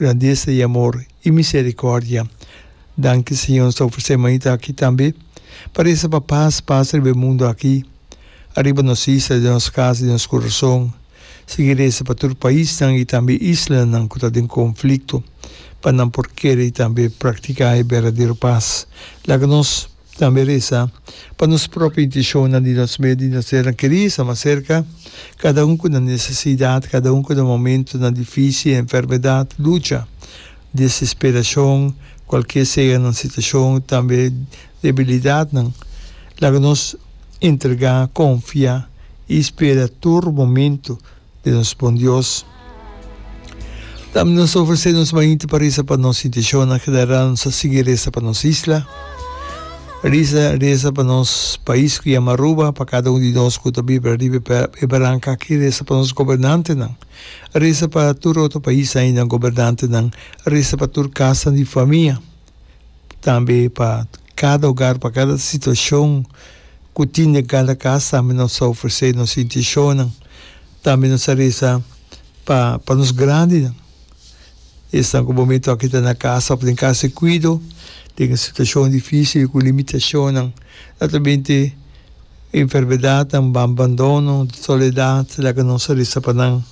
Grandesa i amor i misericordia. Danki Señor nos ta ofrece manita aki tambe pa reza pa paz pasa riba e mundo aki, ariba nos isla, den nos casa, den nos corazon. Sigui reza pa tur paisnan i tambe islanan cu ta den conflicto pa nan por kere i tambe practica e berdadero paz. Laga nos. Tambe resa pa nos propio intishonnan di nos medio di nos seran kerí, sa mas serka, kada un ku na nesesidat, kada un ku na momentunan difísil, enfermedat, lucha, desesperashon, kualke sea nan situashon, tambe debilidatnan. Laga nos entregá, konfia i spera tur momentu. Di nos bon Dios. Dam nos ofresé nos mainti pa resa pa nos inteshonnan, general nos a sigui resa pa nos isla, risa resa pa nos pais ku yama Aruba, pa kada un di nos ku ta biba riba e baranka aki, resa pa nos gobernantenan, resa pa tur otro pais ainan gobernantenan, resa pa tur kasanan di famia. tambe pa kada hogar, pa kada situacion cu tin den cada cas tambe nos ta ofrece nos intencionnan, tambe nos ta reza pa pa nos grandinan, esnan cu bo momento aki ta na casa of den casa di cuido den e situacion dificil cu limitacionnan, atramente enfermedadnan, banbandono, soledad, laga nos ta reza pa nan,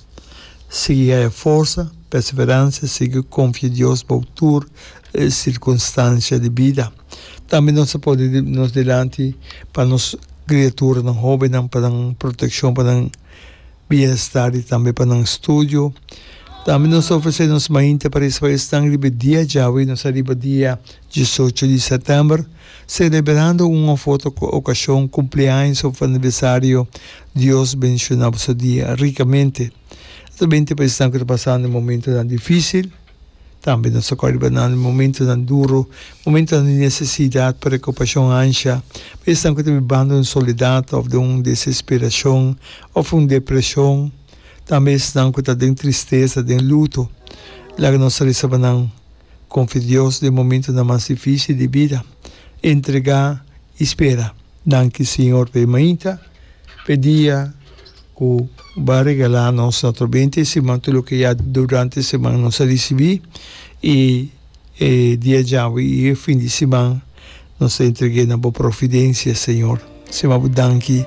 sigui haya forsa, perseverancia, sigui confia Dios bow tur sirkunstansia di bida. Tambe nos ta pone nos dilanti pa nos kriaturanan hobennan pa nan protekshon, pa nan bienestar i tambe pa nan studio. Tambe nos ta ofresé nos mainta pa resa pa esnan riba e dia djawe, nos ta riba dia disocho di sètèmber, selebrando un òf otro okashon, kumpleaños òf aniversario. Dios bendishoná boso dia rikamente. Nos ta bende pa esnan ku ta pasando momentonan difísil. Tambe nos a kòrda riba nan di momentunan duru, momentunan di nesesidat, preokupashon ansha, pa esnan ku ta bibando den soledat òf den un desesperashon òf un depreshon, tambe esnan ku ta den tristesa, den luto. Laga nos a resa pa nan, Konfia Dios den momentunan mas difísil di bida. Entregá i spera. Danki Siñor p'e mainta, p'e dia ku Bo a regalá nos atò benta e siman, tur loke ya durante e siman nos a risibí, i e dia djawe i e fin di siman nos a entreg'é na Bo providensia, Señor. Siman Bo danki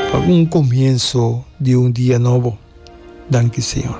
pa un komienso di un dia nobo. Danki, Señor.